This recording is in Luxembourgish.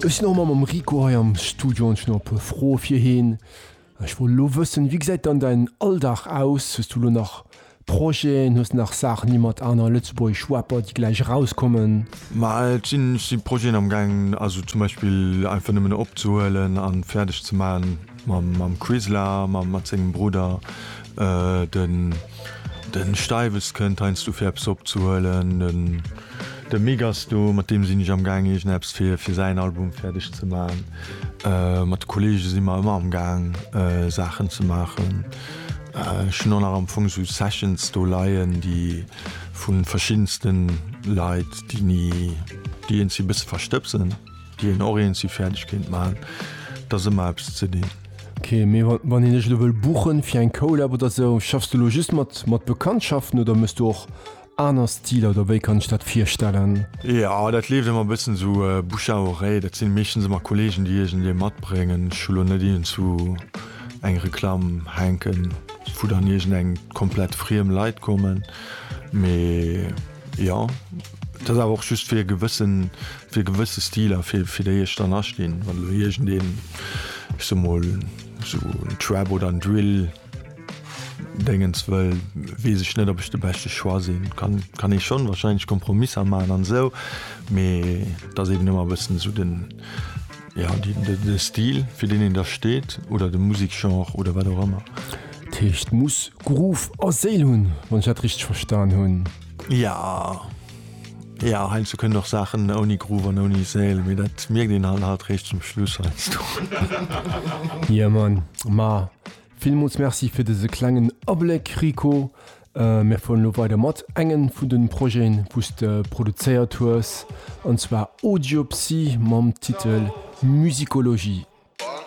Ech sinn och mam mam Rico hei am Studio an ech hunn och e puer Froe fir heen. Ech wollt elo wëssen, wéi gesäit dann däin Alldag aus? Hues du elo nach Projeten? Hues de nach Saachen, déi mat aner lëtzebuergesch Rapper, déi gläich erauskommen? Ma et sinn Projeten amgaangen, also zum Beispill einfach nëmmen opzehuelen a fäerdeg ze maachen. Mam Quisla, mat sengem Brudder, de Steiwes kënnt heiansdo fir eppes opzehuelen, de Mick ass do, mat deem sinn ech amgaang iergendeppes fir säin Album fäerdeg ze maachen. Mat de Kolleege si mer ëmmer amgaang Saachen ze maachen. Ech hunn och nach am Fong sou Sessions do leien, déi vu verschiddenste Leit, déi ni, déi een si e bësse verstëbsen. Déi een och eens si fäerdeg kéint maachen, et ass ëmmer eppes ze dinn. Ok, mee wann een dech elo wëll buchen fir eng Collab oder sou, schaffs du lo just mat Bekanntschaften oder mëss du och aner Stiler oder wéi kann ech dat virstellen? Jo, dat leeft ëmmer e bëssen sou bouche à oreille, dat sinn meeschtens ëmmer Kollegen déi iergendee matbréngen. Ech hu lo net iergendwou eng Reklamm hänken wou dann iergendeng komplett friem Leit kommen, mee jo, et ass awer och just fir e gewëssen Fir gewësse Stiler, fir fir déi ech dann astinn, wann elo iergendeen, ech soe mol esou en Trap oder en Drill Déngens wëll, weess ech net, ob ech de beschte Choix sinn. Kann kann ee schonn wahrscheinlech Kompromisser maachen an esou, mee et ass eben ëmmer e bëssen esou den, jo déi de Stil fir deen een da steet oder de Musikgenre oder wat och ëmmer. Dat heescht muss Groove a Séil hunn, wann ech dat richteg verstan hunn? Jo. Ja heinsdo so kënnen och Saachen ouni Groove an ouni Séil, mee dat mierkt een halt halt réischt zum Schluss heinsdo. Yeah man, ma villmools Merci fir dëse klengen Abléck Rico. Mir fueren elo weider mat engen vun de Projeten wou s de produzéiert hues, an zwar Audiopsy mam Titel Musicologie.